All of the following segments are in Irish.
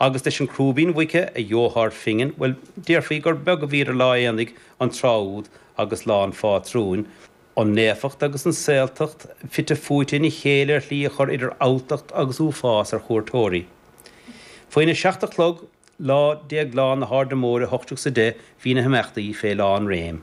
Agus leis an crúibín muice a gheofá ar phingin, bhuel, déarfaí gur beag a bhí idir lá aonaigh an tráth úd agus lá an phátrúin, an naofacht agus an saoltacht fite fuaite ina chéile ar shlí a chur idir alltacht agus uafás ar chuairteoirí. Faoina seacht a chlog lá Déagláin na hAirde Móire, ocht déag is a deich, bhí na himeachtaí fé lánréim.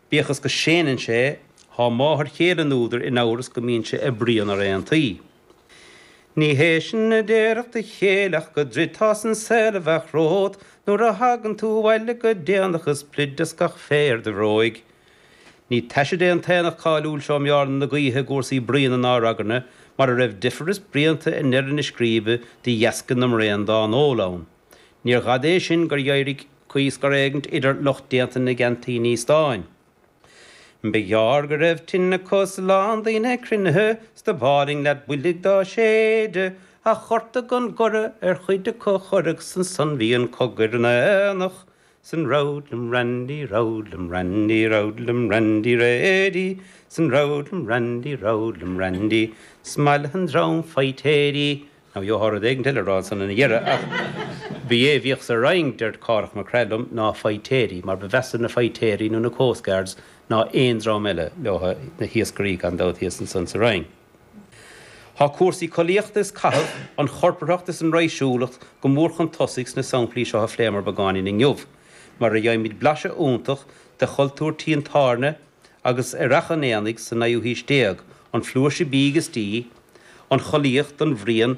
Bíodh is go séanann sé, thá máthair chéile an údair in amhras go mbíonn sé ag bruíon ar aontaí. Ní hé sin a déarfadh do chéile ach go dtroidfeása an saol a bheadh romhat nuair a thagann tú abhaile go déanach is pluid as gach féar de bhróig. Ní taise é an t-aonach cáiliúil seo i mBearna na Gaoithe i gcúrsaí bruíne ná ragairne mar a raibh difear is bruíonta i ndeireadh na scríbe de dheasca na mbraon dá n-ól ann. Níorbh fhada é sin gur éirigh caoi scor éigint idir lucht déanta na gceaintíní stáin. Ba ghearr go raibh tine acu is a lán daoine cruinnithe is dob álainn leat builg dá séideadh, ach ghortaigh an goradh ar chuid acu a chuireadh is ansan bhí an cogadh ar an aonach Sin Roadlam Randy, Roadlam Randy, Roadlam Randy Reidy, Sin Roadlam Randy, Roadlam Randy, is mallaithe an dream vaidhtéirí. Nó gheofá rud éigint eile a rá ansan ina dheireadh ach b'é a bhíodh sa Rinn, dúirt Cárthach Mac Craith liom, ná vaidhtéirí, mar ba mheasa na vaidhtéirí nó na Coast Guards ná aon dream eile leotha, na hiascairí gan dabht thíos ansan sa Rinn. Tá cúrsaí collaíochta is caitheamh, an chorparthacht is an raidhsiúlacht go mór chun tosaigh sna samplaí seo a phléamar beagáinín inniu, mar a gheibhimid blaiseadh iontach de chultúr tí an tábhairne agus ar fhaiche an aonaigh sa naoú haois déag, an flúirse bídh is dí, an chollaíocht, an bhruíon,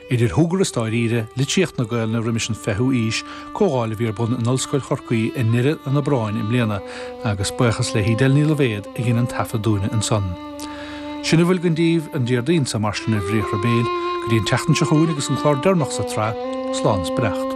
Idir shúgradh is dáiríre, litríocht na Gaolainne roimis an fichiú aois, comhdháil a bhí ar bun in Ollscoil Chorcaí i ndeireadh an Aibreáin i mbliana, agus buíochas le hEdel Ní Loibhéad a dhein an taifead dúinne ansan. Sin a bhfuil againn daoibh an Déardaoin seo, mar sin, ar Bhriathra Béil, go dtí an tseachtain seo chugainn agus an clár deireanach sa tsraith, Slán 's Beannacht.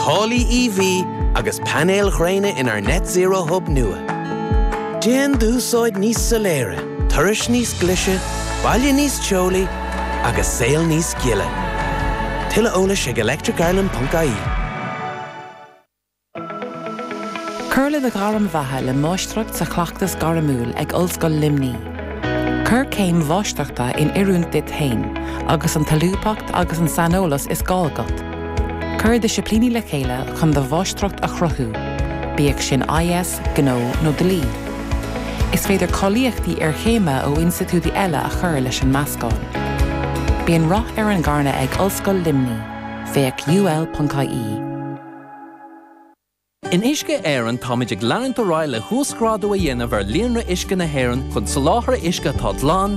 Táillí EV agus painéil ghréine inár Net Zero Hub nua. Déan d'úsáid níos soiléire, turais níos glise, baile níos teolaí agus saol níos gile. Tuilleadh eolais ag electricireland.ie. Cur le do ghairm bheatha le Máistreacht sa Chleachtas Gairmiúil ag Ollscoil Luimní. Cuir céim Mháistreachta in oiriúint duit féin agus an tsolúbthacht agus an saineolas is gá agat. Cuir disciplíní le chéile chun do mháistreacht a chruthú, bíodh sin IS, Gnó nó Dlí. Is féidir cáilíochtaí iarchéime ó institiúidí eile a chur leis an meascán. Bíonn rath ar an gcarnadh ag Ollscoil Luimnigh, féach ul.ie. In Uisce Éireann táimid ag leanúint ar aghaidh le huasghrádú a dhéanamh ar líonra uisce na hÉireann chun soláthar uisce atá glan,